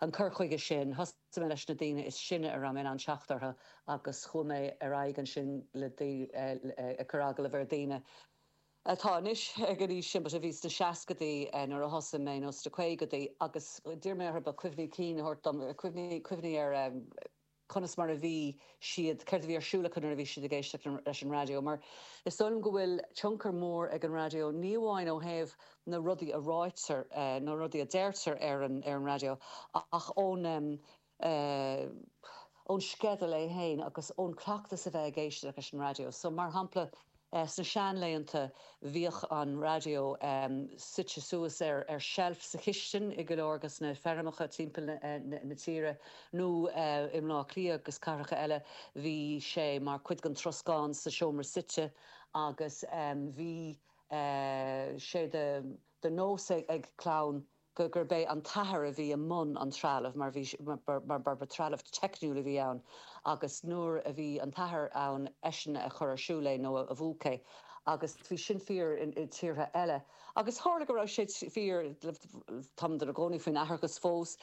an cur chuige sin. Thosaigh mé leis na daoine is sine a raibh mé in ann teacht orthu agus chuaigh mé ar aghaidh ansin le ag cur agallaimh ar dhaoine atá anois ag an aois sin but a bhí sna seascaidí nuair a thosaigh mé nó sna caogaidí agus d'iarr mé orthu cuimhní cinn a thabhairt dom, cuimhní ar a conas mar a bhí siad, céard a bhí ar siúl acu nuair a bhí siad ag éisteacht leis an raidió, mar is dóigh liom go bhfuil tionchar mór ag an raidió, ní amháin ó thaobh na rudaí a ráitear, na rudaí a deirtear ar an raidió, ach ón ón sceideal é féin agus ón cleachtas a bheith ag éisteacht leis an raidió. So, mar shampla. Sna seanlaethanta bhíodh an raidió suite suas ar sheilf sa chistin i go leor de na feirmeacha timpeall na tíre nó i mBleá Cliath agus cathracha eile bhí sé mar chuid den troscán sa seomra suite agus bhí sé de nós ag clann gurb é an t-athair a bhí i mbun an trealaimh mar bhí mar ba trealamh teicniúil a bhí ann agus nuair a bhí an t-athair ann eisean a chuir ar siúl é nó a mhúch é agus bhí sin fíor i dtíortha eile agus tharla go raibh sé fíor táimid i gcónaí faoin atharthachas fós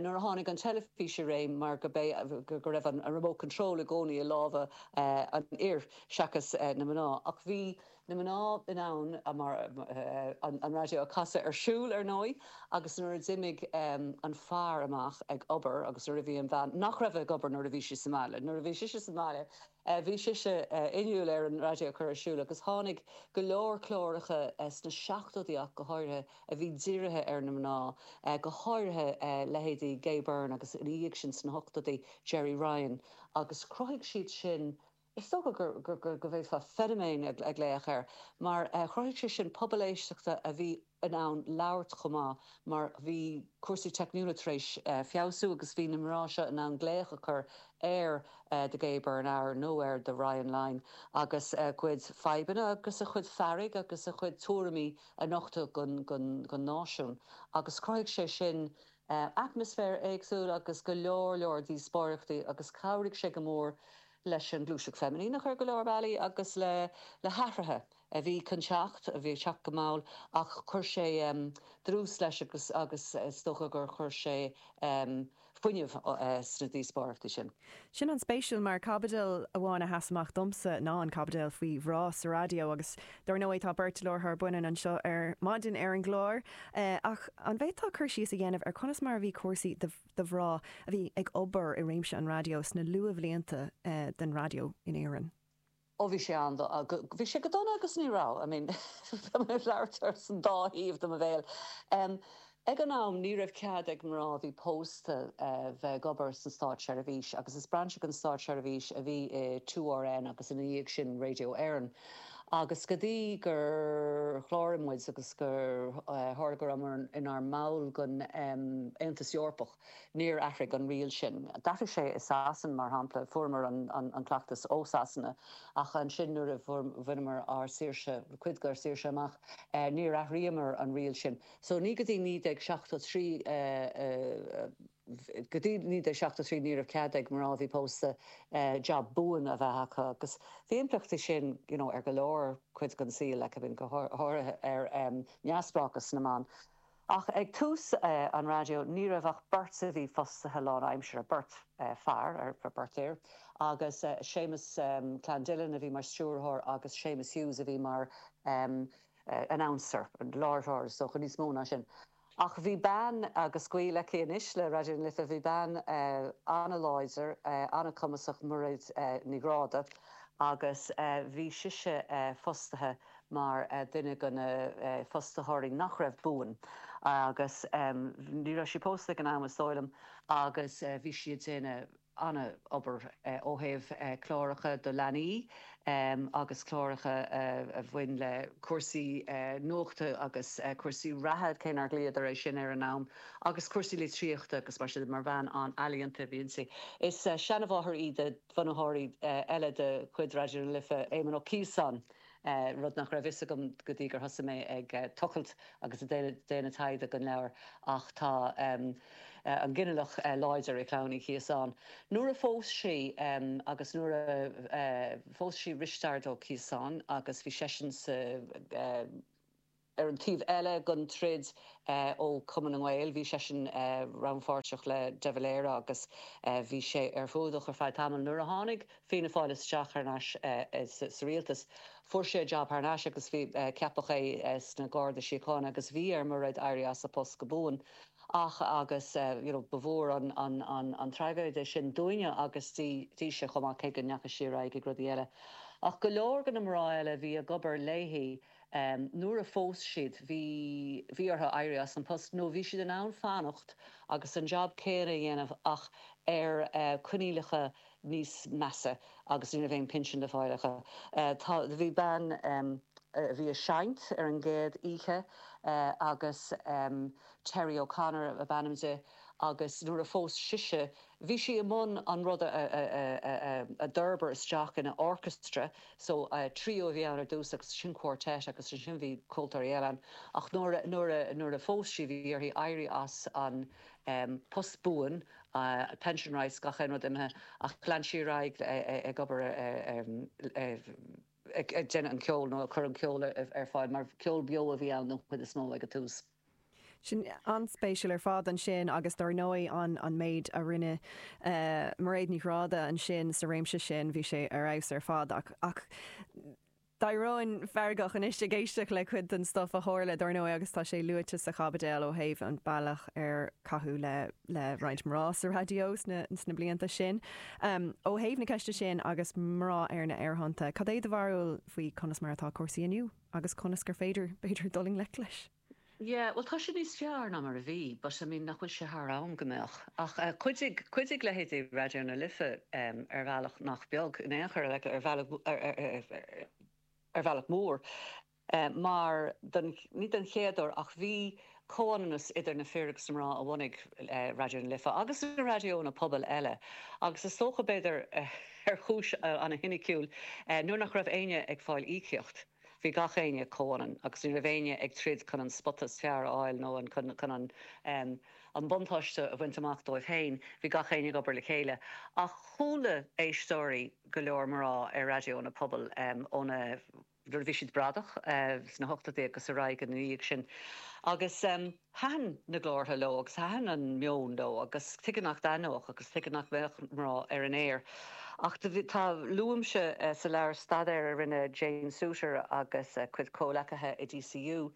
nuair a tháinig an teilifís i réim mar go bé go raibh an remote control i gcónaí i lámha an fhir seachas na mná ach bhí na mná in ann an raidió a chasadh ar siúl, ar ndóigh, agus nuair a d'imigh an fear amach ag obair agus nuair a bhí an bhean nach raibh ag obair nuair a bhí sí sa mbaile. Nuair a bhí sise sa mbaile bhí sise inniúil ar an raidió a chur ar siúl agus tháinig go leor cláracha sna seachtóidí ach go háirithe a bhí dírithe ar na mná, go háirithe leithéidí Gay Byrne agus ina dhiaidh sin sna hochtóidí Gerry Ryan agus chruthaigh siad sin. Is dócha go bhféadfá feiniméan a ghlaoch air mar chruthaigh sé sin pobal éisteachta a bhí in ann labhairt chomh maith mar bhí cúrsaí teicniúla tar éis feabhsú agus bhí na mná seo in ann glaoch a chur ar The Gay Byrne Hour nó ar The Ryan Line agus a chuid fadhbanna agus a chuid fearg agus a chuid tuairimí a nochtadh don náisiún agus chruthaigh sé sin atmaisféar éagsúil agus go leor leor díospóireachtaí agus chabhraigh sé go mór leis an ngluaiseacht feiminíneach ar go leor bealaí agus le hathruithe a bhí chun teacht, a bhí ag teacht go mall ach chuir sé dlús leis agus is dócha gur chuir sé fuinneamh sna díospóireachtaí sin. Sin an-spéisiúil mar caibidil amháin a sheas amach domsa ná an caibidil faoi mhná sa raidió agus dár ndóigh tá beirt láithreoir baineanna anseo ar maidin ar an gclár ach an bhféadfá cur síos a dhéanamh ar conas mar a bhí cúrsaí do de mhná a bhí ag obair i réimse an raidió sna luathbhlianta den raidió in Éirinn. Ó bhí sé an-dona, bhí sé go dona agus ní raibh, I mean, tá mé ag labhairt ar an dá thaobh de mo bhéal. Ag an am ní raibh cead ag mná a bhí pósta bheith ag obair sa státseirbhís agus is brainse den státseirbhís a bhí i 2RN agus ina dhiaidh sin Radio Éireann. Agus go dtí gur chláraigh muid agus gur tharla go rabhamar inár mball den Aontas Eorpach, níor athraigh an riail sin. D'athraigh sé i Sasain, mar shampla, fuaireamar an cleachtas ó Sasana, ach ansin nuair a bhaineamar ár saoirse, cuid dár saoirse amach, níor athraíomar an riail sin. So ní go dtí 1973 a. Go dtí 1973 ní raibh cead ag mná a bhí pósta jab buan a bheith acu agus bhí impleachtaí aige sin you know ar go leor cuid den saol like I mean go háirithe ar neamhspleáchas na mban. Ach ag tús an raidió ní raibh ach beirt a bhí fostaithe lánaimseartha, beirt fear er beirt fhear agus Séamus Clandillon a bhí mar stiúrthóir agus Séamus Hughes a bhí mar announcer, láithreoir, is dócha níos mó ná sin. Ach bhí bean, agus gaol aici anois le Raidió na Life, bhí bean an-láidir, an-chumasach, Mairéad Ní Ghráda, agus bhí sise fostaithe mar duine de na fostaitheoirí nach raibh buan agus ní raibh sí pósta ag an am is dóigh liom agus bhí sí ag déanamh, an-obair ó thaobh cláracha do leanaí agus cláracha a bhain le cúrsaí nuachta agus cúrsaí reatha, cé nár ghlaodar é sin ag an am, agus cúrsaí litríochta agus mar sin de. Mar bean an-ealaíonta a bhí inti. Is seanmháthair í do bhunaitheoir eile de chuid Raidió na Life, Éamon Ó Ciosáin. rud nach raibh a fhios agam go dtí gur thosaigh mé ag tochailt agus ag déanamh taighde don leabhar, ach tá an ginealach láidir i chlann Uí Chiosáin. Nuair a phós sí agus nuair a phós sí Risteard Ó Ciosáin agus bhí seisean sa. Ar an taobh eile den troid, ó Chumann na nGael, bhí seisean rannpháirteach le de Valera agus bhí sé ar foluain ar feadh tamaill. Nuair a tháinig Fianna Fáil isteach thar n-ais sa rialtas, fuair sé jab thar n-ais agus ceapadh é sna Garda Síochána agus bhí ar Mhairéad éirí as a post go buan. Ach, agus you know, ba mhór an traigéide é sin dúinne agus dise chomh maith cé go ndeachaigh sí ar aghaidh ag rudaí eile. Ach go leor de na mná eile a bhí ag obair léi. Nuair a phós siad bhí bhí orthu éirí as an post nó bhí siad in ann fanacht agus an jab céanna a dhéanamh ach ar coinníollacha níos measa agus ní raibh aon phinsean le fáil acu. Tá bhí bean a bhí ag seinm ar an gcéad oíche agus Terry O'Connor ab ainm di agus nuair a phós sise Bhí sí i mbun an rud a d'fhorbair isteach ina orchestra, so, trio a bhí ann ar dtús agus ansin quartet agus ansin bhí ceoltóirí eile ann ach nuair a phós sí bhí uirthi éirí as an post buan, pension rights, gach aon rud imithe ach lean sí ar aghaidh ag obair ag déanamh an cheoil nó ag cur an cheoil ar fáil mar ceol beo a bhí ann don chuid is mó ag an tús. Sin an-spéisiúil ar fad ansin agus dár ndóigh an méid a rinne Mairéad Ní Ghráda ansin sa réimse sin, bhí sé ar fheabhas ar fad ach d'éirínn feargach anois ag éisteacht le cuid den stuif a tharla dár ndóigh agus tá sé luaite sa chaibideal ó thaobh an bealach ar caitheadh le roinnt mná sa raidió sna blianta sin. Ó thaobh na ceiste sin agus mná ar na aerthonnta, cad é do bharúil faoi conas mar atá cúrsaí inniu? Agus conas gur féidir, b'fhéidir, dul i ngleic leis? Yeah, bhuel, tá sé níos fearr ná mar a bhí, but, I mean, nach bhfuil sé thar am go mbeadh? Ach chuidigh, chuidigh leithéidí Raidió na Life ar bhealach nach beag, in aon chor, ar bhealach, ar bhealach mór, mar don, ní don chéad uair ach bhí, comhionannas idir na fir agus na mná a bhunaigh Raidió na Life agus na raidiónna pobail eile agus is dócha, b'fhéidir ar chúis ana-shoiniciúil, nuair nach raibh éinne ag fáil íocaíocht, bhí gach éinne comhionann agus ní raibh éinne ag troid chun an spota is fearr a fháil nó chun an buntáiste a bhaint amach dóibh féin, bhí gach éinne ag obair le chéile. Ach chuala éisteoirí go leor mná ar raidiónna pobail ó na nuair a bhí siad bradach sna hochtóidí agus ar aghaidh ina dhiaidh sin agus thaitin na glórtha leo agus thaitin an meon leo agus tuige nach dtaitneodh agus tuige nach mbeadh mná ar an aer ach tá, luaimse sa leabhar staidéar a rinne Jane Suiter agus a cuid comhleacaithe i DCU,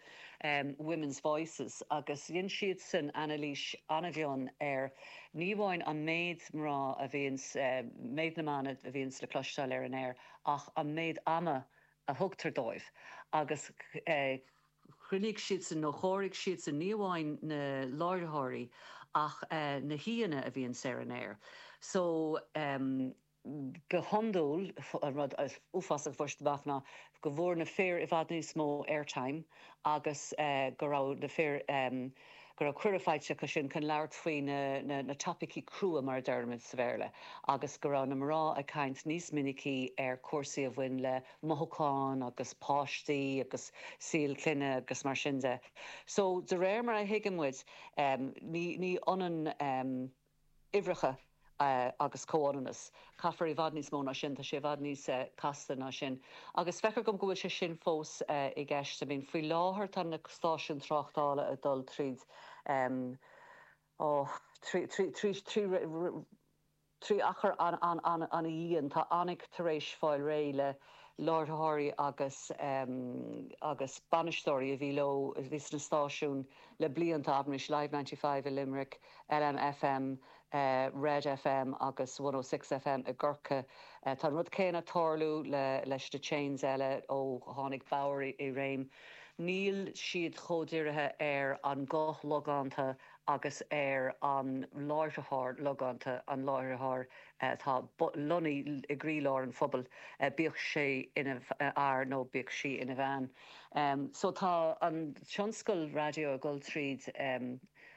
Women's Voices, agus dhein siadsan anailís an-mhion ar ní amháin an méid mná a bhíonn, méid na mban a bhíonn le cloisteáil ar an aer, ach an méid ama a thugtar dóibh agus chruinnigh siadsan nó chomhairigh siadsan ní amháin na láithreoirí ach na haíonna a bhíonns ar an aer so go hiondúil an rud uafásach a fuair siad amach ná go bhfuair na fir i bhfad níos mó airtime agus go raibh na fir go raibh cuireadh faighte acu sin chun labhairt faoi na topaicí crua, mar a deirimid sa Bhéarla, agus go raibh na mná ag caint níos minicí ar chúrsaí a bhain le mothúcháin agus páistí agus saol clainne agus mar sin de. So, de réir mar a thuigeann muid, ní ionann. uimhreacha agus comhionannas. Caithfear i bhfad níos mó ná sin, tá sé i bhfad níos casta ná sin. Agus feictear dom go bhfuil sé sin fós i gceist. I mean, faoi láthair tá na stáisiúin tráchtála ag dul tríd, oh, trí, trí, trí, trí, trí achar an-an-an-an-an-dhian, tá Annick tar éis fáil réidh le láithreoirí agus, agus bainisteoirí a bhí leo, a bhí sna stáisiúin le blianta, abraimis Live Ninety Five i Limerick, LMFM, Red FM agus 106FM i gCorcaigh. Tá an rud céanna ag tarlú leis na chains eile ó tháinig Bauer i réim. Níl siad chomh dirithe ar an ghuth logánta agus ar an láithreoir logánta, an láithreoir atá lonnaithe i gcroílár an phobail, bíodh sé ina fhear nó bíodh sí ina bhean. So tá an tionscal raidió ag dul tríd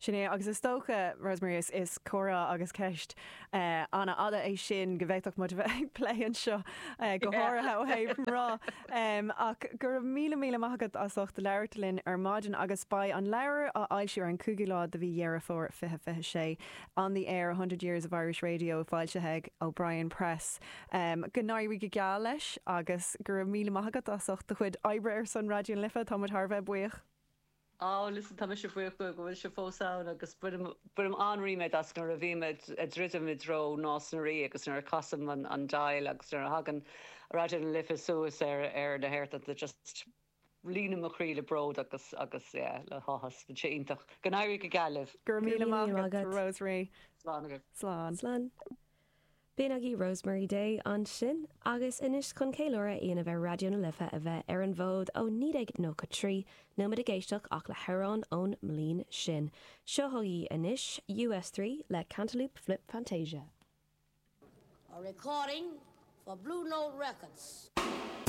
Sin é, agus is dócha, Rosemary, is comhrá agus ceist an-fhada é sin go bhféadfadh muid a bheith ag plé anseo go háirithe ó thaobh mná. Ach go raibh míle míle maith agat as ucht labhairt linn ar maidin agus beidh an leabhar á fhoilsiú ar an 5ú lá de mhí Dheireadh Fómhair 2026, On the Air, a Hundred Years of Irish Radio, foilsithe ag O'Brien Press. Go n-éirí go geal leis agus go raibh míle maith agat as ucht do chuid oibre ar son Raidió na Life, tá muid thar a bheith buíoch. Ó, listen, tá mise buíoch go bhfuil sibh fós ann agus bainim an-ríméad as nuair a bhím ag druidim i dtreo Nás na Rí agus nuair a chasaim an dial agus nuair a thagann Raidió na Life suas ar na haerthonnta just líonann mo chroí le bród agus yeah le háthas. Bíonn sé iontach. Go n-éirí go geal libh. Go raibh míle maith agat, Rosemary. Slán agaibh. Slán. Slán. B'in agaibh Rosemary Day ansin. Agus anois chun ceiliúradh a dhéanamh ar Raidió na Life a bheith ar an bhfód ó 1993, níl muid ag éisteacht ach le hamhráin ón mbliain sin. Seo chugaibh anois Us Three le Cantaloupe Flip Fantasia. A recording for Blue Note Records.